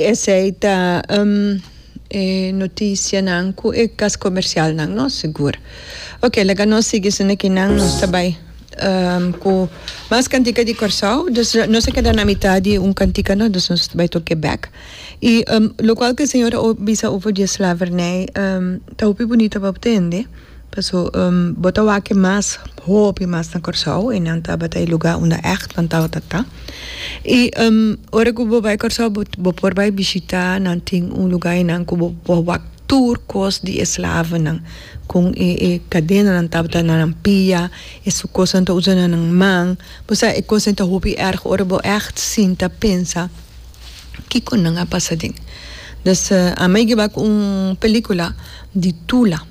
Esei ta e notisianan ku e kas komersialnan no? Sigur. Oke, laga nos sigui esun ekinan. Nos ta bai ku mas kantika di Kòrsou, dus nos a keda na mitat di un kantika no, dus nos ta bai tur ke bèk. I lokual ku e señor a bisa over di e slavernij ta hopi bunita pa bo tende. Paso bo ta wak mas hopi mas na Kòrsou i nan tabata e lugá unda ègt nan tabata ta. I ora ku bo bai Kòrsou bo por bai bishitá nan tin un lugá einan ku bo por wak tur kos di e slavonan kon e e kadenanan tabata na nan pia e su kosnan ta usa na nan man bo sa e kosnan ta hopi èrg ora bo ègt sinta pensa kiko nan a pasa den. Des a mei gueba ku un pelíkula di Tula.